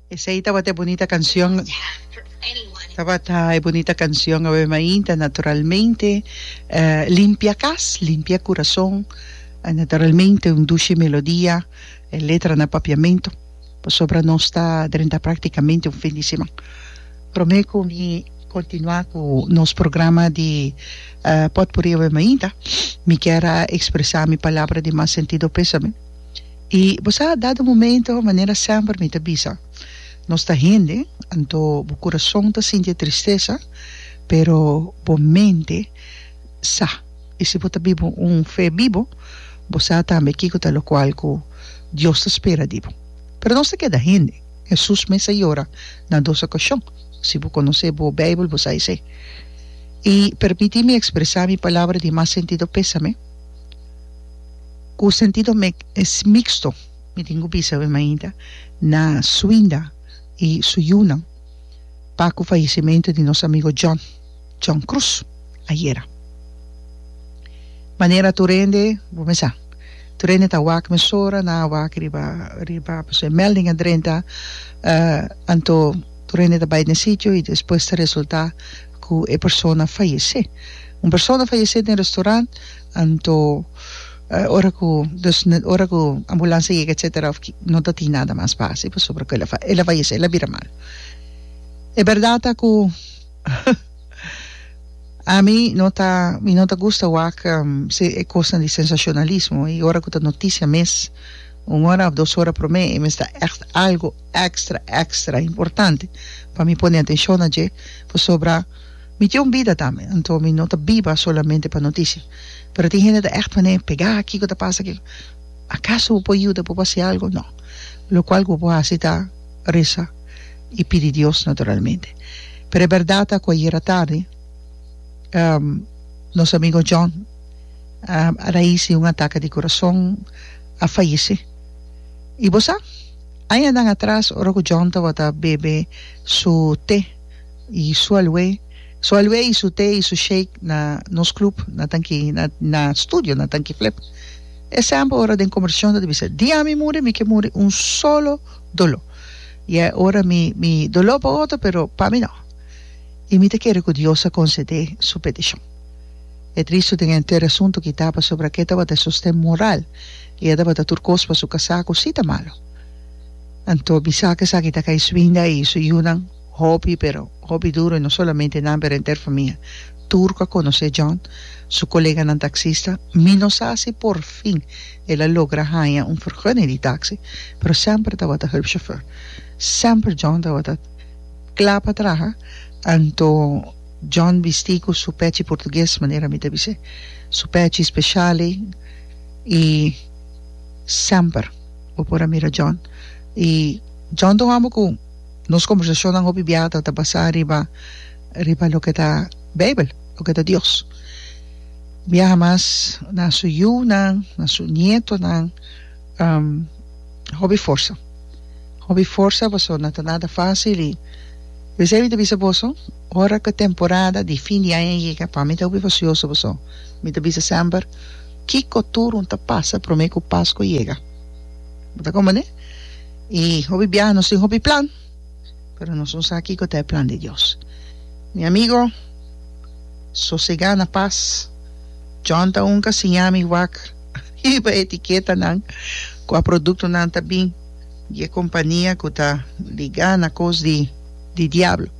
Esei tabata e bunita cancion tabata e bunita cancion awe mainta naturalmente limpia cas limpia curason naturalmente un dushi melodia e letra na papiamento pasobra nos ta drenta practicamente un fin di siman prome cu mi continua cu nos programa di potpuri awe mainta mi kier a expresa mi palabra di mas sentido pesame. I bo sa, dado momento, manera semper mi ta bisa, nos ta hende, anto bo kurason ta sinti e tristesa, pero bo mente sa. I si bo ta biba un fe bibo, bo sa tambe kiko ta lokual ku Dios ta spera di bo. Pero nos ta keda hende. Hesus mes a yora na dos okashon. Si bo konosé bo Beibel, bo sa esei. I permití mi ekspresá mi palabra di mas sentido pésame. Ku sentido mek es miksto? Mi tin ku bisa awor mainta na Suinda i su yunan pa ku fayesimentu di nos amigo John, John Cruz, ayera. Manera tur hende, bo mes sa, tur hende ta wak mesora, nan a wak riba riba pasobra e melding a drenta, anto tur hende ta bai den sitio i despues ta resultá ku e persona fayesé. Un persona fayesé den restorant. Anto ora ku dus ora ku ambulansia yega etsetera of ki no ta tin nada mas pa hasi pasobra ku el a fa el a fayesé el a bira mal e bèrdat ta ku ami no ta mi no ta gusta wak e kosnan di sensashonalismo i ora ku ta notisia mes un ora of dos ora promé e mester ta ègt algu èkstra èkstra importante pa mi pone atenshon na dje pasobra. Mi tin un bida tambe, anto mi no ta biba solamente pa noticia. Pero tin hende ta echt manera pega kico ta pasa kico. Acaso bo por yuda bo por haci algo? No. Locual cu bo por haci ta reza y pidi Dios naturalmente. Pero e berdad ta cu ayer atardi nos amigo John a rais di un ataca di corazon a fayece. Y bo sa? Añanan atras ora cu John tabata bebe su te. y su alue su alue y su te y su shake na nos club na tanki na na studio na tanki flip e sample ora den comercion ta di bisa dia mi muri mi ke muri un solo dolo y e ora mi mi dolo pa otro pero pa mi no y mi ta kere cu Dios a concede su peticion e triste den e anter asunto kita pasobra ake tabata e sosten moral y e tabata tur cos pa su casa cu si ta malo anto mi sa cu esaki ta Kaiswinda y su yunan. Hopi, pero hopi duro i no solamente nan pero henter famia. Tur ku a konosé John, su koleganan taksista, mi no sa si por fin el a logra haña un fergunning di taksi, pero semper tabata hulpchauffeur. Semper John tabata kla pa traha, anto John bisti ku su pechi portugues, manera mi ta bis'é, su pechi speshal ei, i semper bo por a mira John. I John ta un hòmber ku. Nos kombersacionnan hopi biaha ta ta basá riba riba loke ta Beibel, loke ta Dios. Biaha mas na su yunan, na su nietonan, hopi forsa, hopi forsa pasobra no ta nada fácil i mi siempre ta bisa boso ora ku e temporada di fin di aña yega pa mi ta hopi fasioso pasobra mi ta bisa semper kiko tur un ta pasa promé ku Paskua yega, bo ta kompendé? I hopi biaha nos tin hopi plan, pero nos no sa kiko ta e plan di Dios. Mi amigo, sosegá na pas. John ta un ka siña mi wak riba e etiketanan ku a produktonan ta bin di e kompania ku ta ligá na kos di di diablo.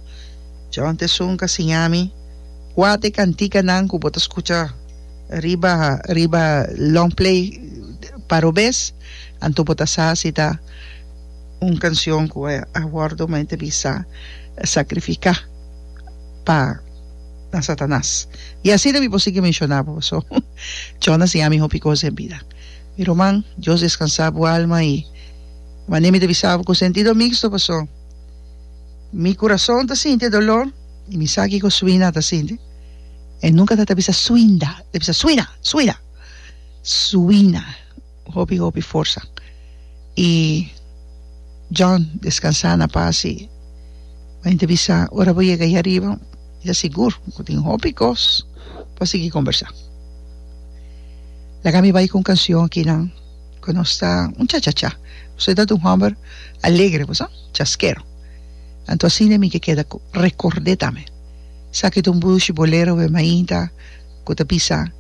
John ta esun ka siña mi kua ta e kantikanan ku bo ta skucha riba riba longplay parobes. Anto bo ta sa si ta un canción cu a wordo mei ta bisa sacrifica pa na Satanas? Y asina mi por sigui menciona bo. So, Djòna siña mi hopi cos den bida. Mi ruman, Dios descansa bo alma y mane mi ta bisa bo cu sentido mixto paso mi curason ta sinti e dolor y mi sa kico Suina ta sinti. E nunca ta ta bisa Suinda, e ta bisa Suina, Suina, Suina. hopi hopi forsa y John descansa na paz y a yente bisa ora bo yega ahi ariba ta sigur bo tin hopi cos pa sigui conversa laga mi bay con cancion aki nan cu nos ta un cha cha cha usted ta un homber alegre pues ah chaskero anto asina mi ke keda recorde tambe sa ki ta un bushi bolero wea mainta ku ta bisa,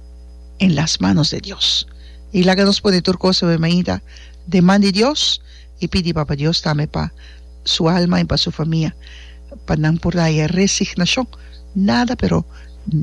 En las manos de Dios. I laga nos pone tur kos na bo mainta den man di Dios i pidi Papa Dios tambe pa su alma i pa su famia pa nan por daya resignashon nada pero